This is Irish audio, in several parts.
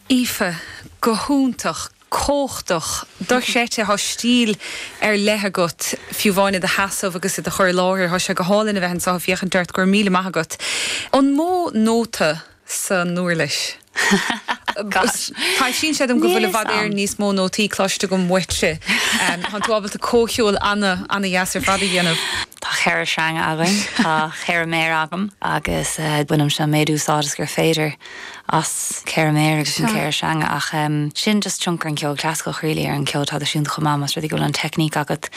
Aoife, Go hiontach, cumhachtach, dochreidte. Tá stíl ar leith agat, fiú amháin i do sheasamh agus i do chur i láthair. Tá sé go hálainn a bheith anseo ag féachaint ort, go raibh míle maith agat. An mó nóta san uirlis? Gosh. Níl fhios a'm. Taibhsíonn sé dom go bhfuil i bhfad Éireann níos mó nótaí cloiste agam uaitse. Tánn tú ábalta comhcheol ana, ana-dheas ar fad a dhéanamh. Tá ceithre sreang againn. Tá ceithre méar agam agus bainimse an méid úsáid is gur féidir as ceithre méar agus na ceithre sreanga ach sin just tionchar an cheoil chlasaiceach really ar an cheol traidisiúnta chomh maith, más rud é go bhfuil an teicníc agat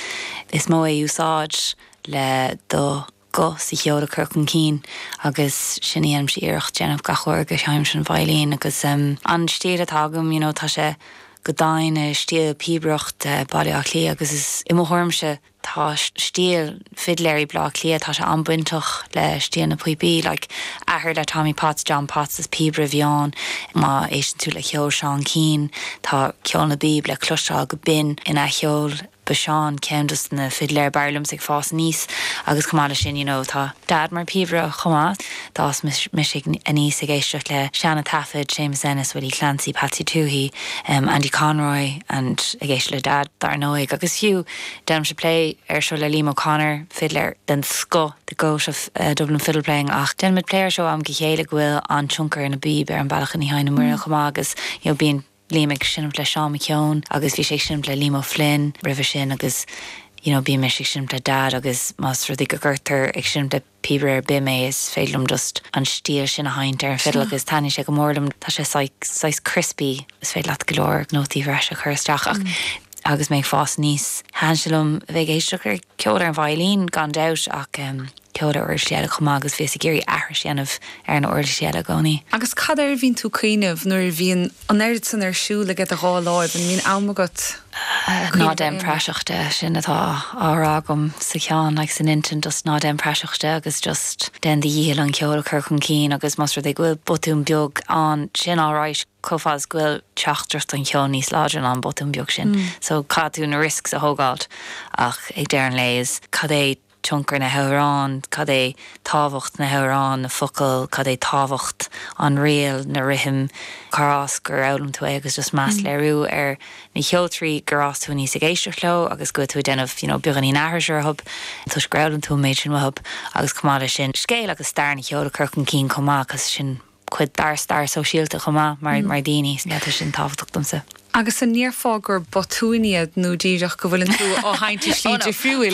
is mó é úsáid le do ghuth sa cheol a chur chun cinn agus sin a dhéanaimse iarracht déanamh gach uair go sheinnimse an veidhlín agus an stíl atá agam you know tá sé go domhain i stíl píobaireacht Bhaile Átha Cliath agus is i mo thuairimse tá stíl fidléirí Bhaile Átha Cliath, tá sé an-bainteach le stíl na píopaí, like, athair le Tommy Potts, John Potts, is píobaire a bhí ann, má éisteann tú le ceol Seán Keane, tá ceol na bpíob le cloisteáil go binn ina cheol, ba Seán ceann dos na fidléir b'fhearr liomsa ag fás aníos agus chomh maith leis sin, you know, tá Dad mar phíobaire chomh maith, d'fhás mise aníos ag éisteacht le seana taifid, Séamus Ennis, Willie Clancy, Patsy Touhey, em, Andy Conroy and ag éisteacht le Dad dar ndóigh agus fiú, Déanaimse plé air seo le Liam O'Connor, fidléir den scoth The Goat of Dublin Fiddle Playing ach déanaimid plé air seo am go chéile go bhfuil an-tionchar na bpíob ar an bealach a sheinneann muidne chomh maith agus you know bíonn Liam ag seinmt le Seán McKeon agus bhí sé ag seinmt le Liam O'Flynn roimhe sin agus you know bíonn mise ag seinmt le Dad agus más rud é go gcuirtear ag seinmt le Píobaire ar bith mé, is féidir liom just an stíl sin a sheinnt ar an fiddle agus taitníonn sé go mór liom, tá sé saghas crispy, is féidir leat go leor nótaí breise a chur isteach ach agus mé ag fás aníos, thaitin sé liom a bheith ag éisteacht le ceol ar an veidhlín gan dabht ach ceol ar uirlisí eile chomh maith agus bhíos ag iarraidh aithris a dhéanamh ar na huirlisí eile i gcónaí. Agus cad air a bhíonn tú ag cuimhneamh nuair a bhíonn An oiread san ar siúl aige do dhá láimh, an mbíonn am agat cuimhneamh ar aon rud? Ná déan praiseach de, sin atá á rá agam sa cheann, like san intinn, just ná déan praiseach de agus just déan do dhícheall an ceol a chur chun cinn agus más rud é go bhfuil botún beag ann, sin alright, chomh fada is go bhfuil teachtaireacht an cheoil níos láidre ná an botún beag sin, so caithfidh tú na risks a thógáilt ach ag deireadh an lae is cad é tionchar na hamhráin, cad é tábhacht na hamhráin, na focail, cad é tábhacht an ríl, na rithim, cárb as gur fhoghlaim tú é agus just meas a léiriú ar na cheoltóirí gur fhás tú aníos ag éisteacht leo agus go bhfuil tú ag déanamh you know beagáinín aithris orthu toisc gur fhoghlaim tú an méid sin uathu agus chomh maith leis sin scéal agus stair an cheoil a chur chun cinn chomh maith cos sin cuid dár stair sóisialta chomh maith mar mar daoine so yeah tá sin tábhachtach domsa. Agus an ndéarfá gur botúin iad nó díreach go bhfuileann tú á sheinnt i slí difriúil?